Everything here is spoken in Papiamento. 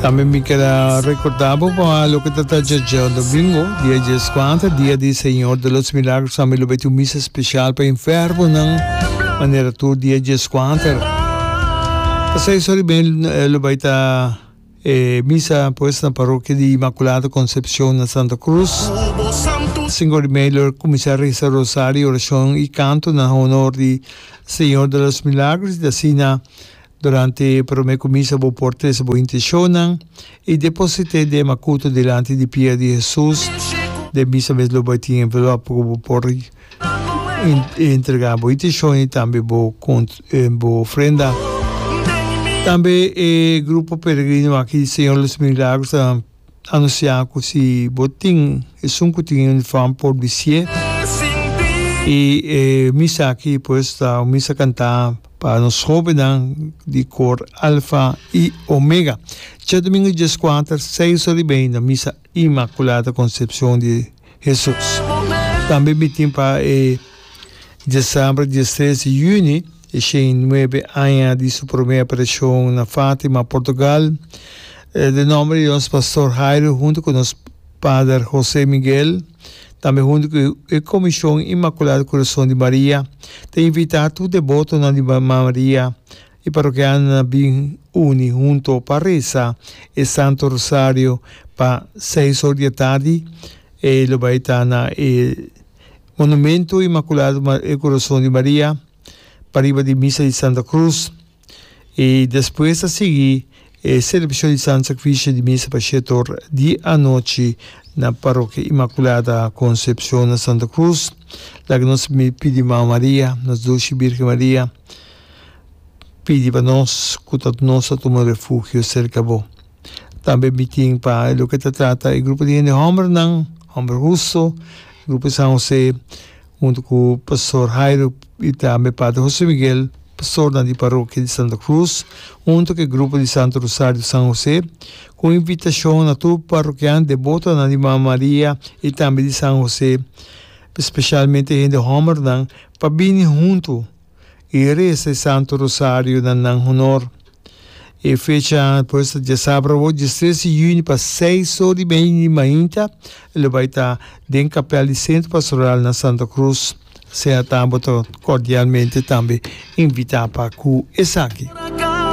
También me queda recordar por favor lo que está ya domingo, día 14, día del Señor de los Milagros, también lo beti un misa especial para enfermo, nan, manera tu día 14. Así es, ben lo baita eh, misa pues na parroquia de Inmaculada Concepción na Santa Cruz. Cinco de mei lo comenzar reza rosario, oración y canto na honor de Señor de los Milagros, de así na Durante e promé kumisa bo por trese bo inteshonnan i deposit'é den e makutu dilanti di pia di Hesus. Den misa mes lo bai tin envelòp ku bo por entregá bo inteshonnan i tambe bo bo ofrenda. Tambe e grupo peregrino aki di Señor de los Milagros ta. anunciá cu si bo tin esun cu tin e uniform por bicié y e misa aki pues ta un misa cantá pa nos jovennan di cor Alfa y Omega. Djadomingo diescuater seis ora y mei na misa Inmaculada Concepcion di Hesus. Tambe mitin pa e diecember diestres y juni. E shen nuebe aña di su promé aparashon na Fátima, Portugal, den nòmber di nos Pastor Jairo huntu ku nos Pader José Miguel, tambe huntu ku e Komishon Inmakulado Kurason di Maria, ta invitá tur debotonan di Mama Maria i parokianonan na bin uni huntu pa resa e Santo Rosario pa seis or di e tardi. E lo bai ta na e Monumento Inmakulado Kurason di Maria. pa riba di misa di Santa Cruz i despues ta sigui e selebrashon di Santo Sacrificio di misa pa shete or di anochi na Parokia Inmaculada Concepcion na Santa Cruz laga nos pidi Mama Maria, nos Dulci Birgen Maria, pidi pa nos cu ta nos ta tuma refugio cerca bo. Tambe mi tin pa e loke ta trata e grupo di hende hòmbernan, hòmber huso, grupo San José, huntu ku Pastor Hairo i tambe Pater José Miguel, pastornan di parokia di Santa Krus, huntu ku e grupo di Santo Rosario di San José, ku un invitashon na tur parokian debotonan di Mama Maria i tambe di San José, spesialmente hende hòmbernan, pa bini huntu. i resa e Santu Rosario na nan honor. E fecha por esta diasabra awor, diestres di yüni, pa seis or di media di mainta, e lo bai ta den kapèl di Centro Pastoral na Santa Cruz. Asina tambe bo ta cordialmente tambe invita pa cu esaki.